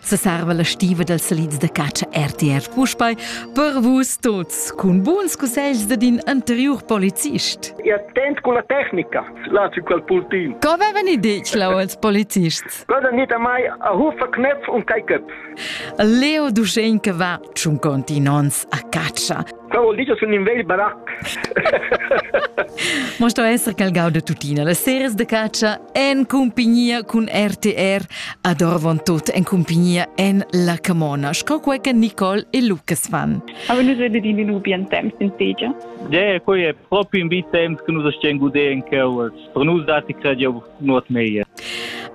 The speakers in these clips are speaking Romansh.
Sesarva la stiva dals salids da catscha RTR puspei per vus tuts cun buns cussegls dad in anteriur polizist. E attent con la tecnica, laci quel pultin. Co avevan i ditg lau als polizists? Quella nita mai a hufa knepf und kai köpf. Leo Duschenke va tschun continons a catscha. Quel vuol dir che sun in vegl barac. Mo sto esser quel gau de tuttina. Las series de caccia en compagnia cun RTR ad Orvon tot en compagnia en La Camona, sco quei che Nicole e Lucas fan. A venus vede din in bien temps in tegia. Ja, quei è proprio in bi temps che nus stiamo godendo in Cowers. Per nus datti crediu nuot meglier.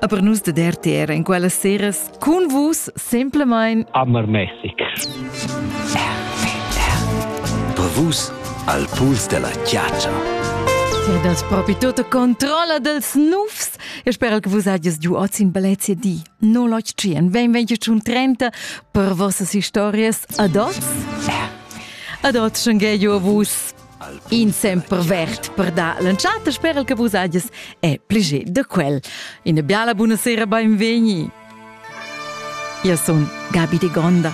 A per nus dad RTR en quellas seras cun vus semplamain Ammermäßig. Per vus al puls della chiaccia. Ti das proprio tutta controlla dels nufs. Eu spero che vus hagies giu oz in bellezia di. No lotg tschien, ben vengi un 30 per vossas historias. Adots! Adots, schengei a vus. In semper vert per dar l'entschatta sperel che vus hagies è pliger da quel. Ina biala buona sera, benvegni! Io sono Gabi de Gonda.